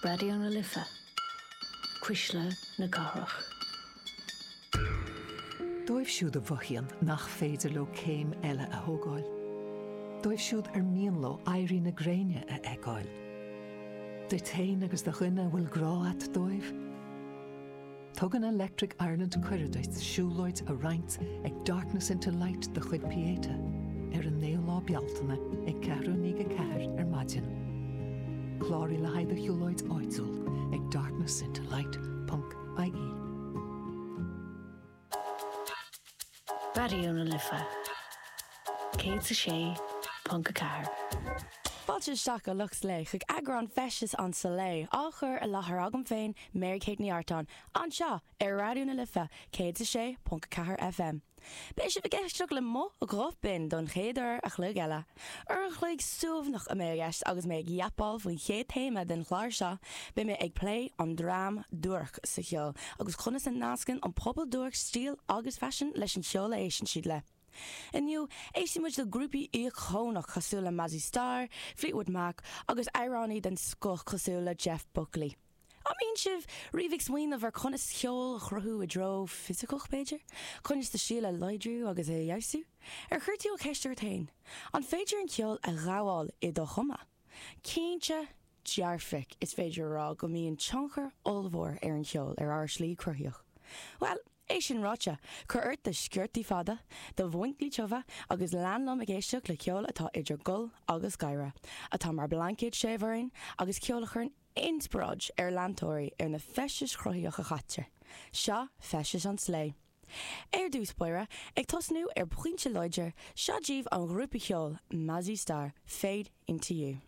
Raidió na Life, Cuisle na Cathrach. Dóibh siúd a mhothaíonn nach féidir leo céim eile a thógáil. Dóibh siúd ar mian leo éirí na gréine a fheiceáil. Duit féin agus do dhuine a bhfuil grá a't dóibh. Tugann Electric Ireland cuireadh duit siúlóid a roinnt ag Darkness into Light de chuid Pieta ar an 9ú lá Bealtaine ag 4:15 ar maidin. Cláraigh le haghaidh do shiúlóid áitiúil ag darknessintolight.ie. Raidió na Life 106.4. Fáilte isteach a lucht Life chuig eagrán Feisteas an tSlé, á chur i láthair agam féin, Mary Kate Ní Artáin, anseo ar Raidió na Life 106.4 FM. Beidh sibh ag éisteacht le mo ghuth binn don chéad uair a chloig eile. Uair an chloig suaimhneach a mbeidh i gceist agus mé ag yapáil faoin chéad téama den chlár seo, beidh mé ag plé an dream duairc sa cheol agus conas a nascann an pobal duairc stíl agus faisean leis an cheol a éisteann siad le. Inniu, éistfidh muid le grúpaí íocónach cosúil le Mazzy Star, Fleetwood Mac agus amhránaí den scoth cosúil le Jeff Buckley. An mbíonn sibh riamh ag smaoineamh ar conas ceol a chruthú i dtreo fisiceach, b'fhéidir? Conas do stíl a láidriú agus a fheabhsú? Ar chuir tú an cheist ort féin, an féidir an ceol a ghabháil i do chuma? Cinnte dearfach is féidir a rá go mbíonn tionchar ollmhór ar an cheol ar ár slí cruthaíoch. Bhuel, é sin ráite, cuir ort do sciortaí fada, do mhuincí tiubha agus lean liom ag éisteacht le ceol atá idir ghol agus gáire, atá mar blaincéad séimh orainn agus ceol a chuireann Inspioráid ar leantóirí ar na feistis chruthaíoch a chaitear. Seo Feisteas an tSlé. Ar dtús báire, ag tosnú ar phointe láidir, seo díobh an ghrúpa cheoil Mazzy Star, Fade Into You.